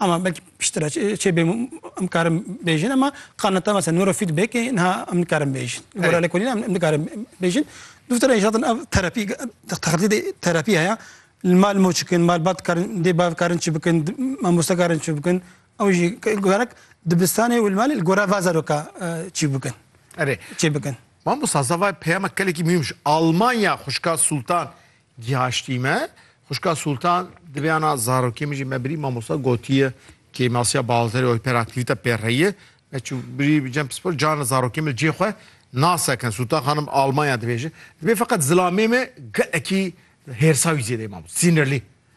Ama belkî piştre çê bê em karim bêjin ama qaneta mesela neurofeedbackê niha em nikarin bêjin. Gora lê kolîna em nikarin bêjin. Duftere inşaatın ev terapî textî de terapî heye. Li mal mo çikin, malbat karin dê bav karin çi bikin, mamoste karin çi bikin. Ew jî gerek dibistanê û li malê li gora va zaroka çî bikin. Erê. Çê bikin. Mamosta zava peyama kelekî mihîm ji Almanya xwişka Sultan Gihaştî me, xwişka Sultan di vêyana zarokê min jî me birî mamosta gotiye kê masiya balterê oy pera aktivîte pê reyiye. Me çû birî bi cem pispor carna zarokê min cê xwe nasekin. Sultan xanim Almanya dibêje. Dibê feqet zilamê me gelekî hêrsa wî zêde ye mamosta. Sînirlî.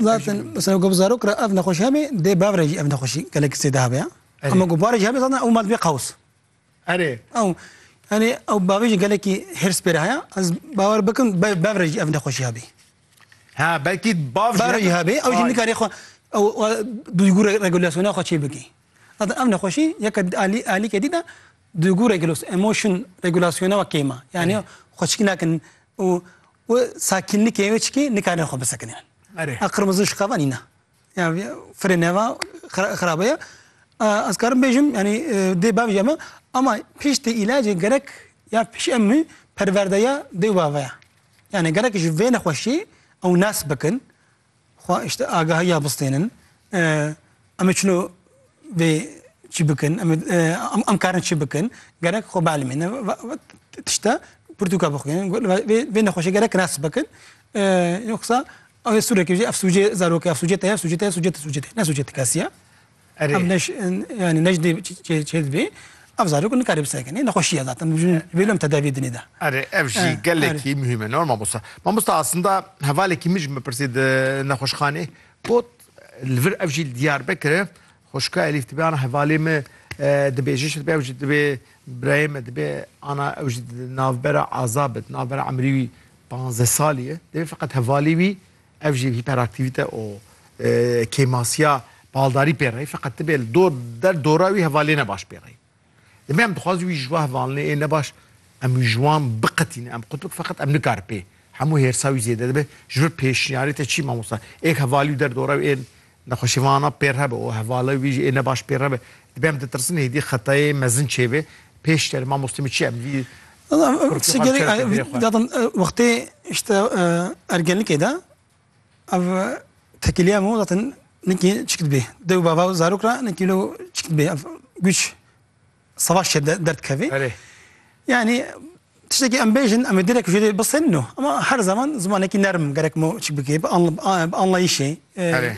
Zaten mesela ku bi zarok re ev nexweşî hebe dê bi ev re jî ev nexweşî gelekî zêde hebe ya. Erê. Ama ku barê jî hebe zaten ew ma dibê qews. Erê. Ew yani ew bavê jî gelekî hêrs pê re heye. Ez bawer bikim be- bev re jî ev nexweşî hebî. Ha belkî bav Bev re jî hebî ew jî Ay. nikarê xwe ew e, duygû re- regulasyona xwe çê bikî. Zaten ev nexweşî yeke alî alîkê dît e duygu regulos emotion regulasyona we kêm e. Yani xwe çikî nakin û û sakînlikê wê çikî nikarin xwe bisekinin. Erê. A qirmizi û şiqava nîne. Ya firê neva xira- xirabe ye. A, Ez karim bêjim yani e, dê bavêje me ama piştî îlacê gerek ya piştî em mî perwerdeya dê û bave ye. Yani gerek ji vê nexweşî ew nas bikin Xwe îşte agahiya bistênin. Em ê çilo vê çi bikin? Em ê em karin çi bikin? Gerek xwe bielmînin. Tişta pirtûka bixwînin. Vê nexweşê gerek kinas bikin. Yoksa ew ê sûrekê jî ev sûcê zarokê, ev sûcê te ye, ev sûcê te ye, sûcê te, sûcê te ye. Ne sûcê ti kes ye. Erê. Em neş yani neş dê çêd bê. Ev zarok nikare bisekinê. Nexweşiye zaten. Bêlo em tedaviyê dinê de. Erê ev jî e, gelekî er. muhîme ne mamosta. Mamosta aslında hevalekî min jî me pirsî di nexweşxanê got li vir ev jî li Diyarbekire xweşika Elîf dibe ana hevalê me dibêje şidibê ew jî dibê birayê me dibê ana ew jî di navbera aza be di navbera emrî wî panzdeh salî ye dibê feqet hevalê wî Ev jî hîperaktîvîte û kêmasiya baldarî pê re ye. Feqet ti bê li dor der dora wî hevalê ne baş pê re ye. Demê em dixwazin wî ji we hevalnê ê ne baş em wî ji wan biqetînin em qutbik feqet em nikarin pê hemû hêrsa wî zêde dibe. Ji vir pêşniyarê te çi ye mamosta? Êk hevalî û der dora wî ên Nexweşîvana pê re be û hevala wî jî ê ne baş pê re be. Dibe em ditirsin êdî xetayê mezin çêbê. Pêş tenê mamostê min çi em vî Kurtî xwe bikeve pê vêrê xwe. Zaten wextê işte ergenlikê de ev tekîlîya min zaten nekî çik dibê. Dew bava û zarok re nekî wilo çik dibê ev güç. Savaş ya dert kevê. Erê. Yani tiştekî em bêjin em ê direk jê dê bisin no. Ama her zaman zimanekî nerm gerek mo çi bikê bi anlayîşê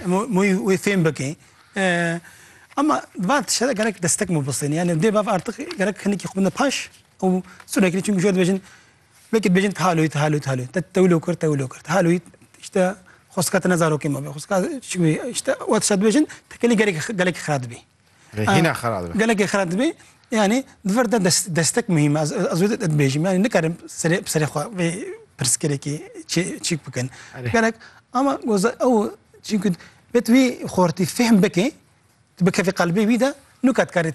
mo wê fêm bikê. Ama di van tişte de gerek destek mo bisin. Yani dê bav artiq gerek hinekî xwe bine paş û sûrekî çimkî jê dibêjin wekî dibêjin tihaloyî tihaloyî tihaloyî te tewilo kir tewilo kir tihaloyî tişte xwesika te ne zarokê me be xwesika çi bê tişte we tişte dibêjin tekelî gelekî gelekî xira dibê. Hîna xera dibe. Gelekê xera dibe. Yani di vir de destek muhîm e. Ez wê dibêjim. Yani nikarim serê bi serê xwe vê pirsgirêkê çîk bikin. Gelek ama goza ew çîkû bet wî xortî fehm bikê tu bikevî qelbê wî de nuka dikarê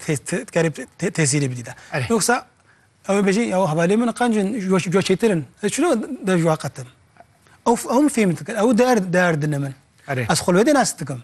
dikarê tesîrê bidî de. Yoksa ew ê bêjî ew hevalê min qancin jo çêtirin. Ez çilo dev ji wan qetim. Ew ew min fêhm dikin. Ew der derdine min. Ez xwe li wê de nas dikim.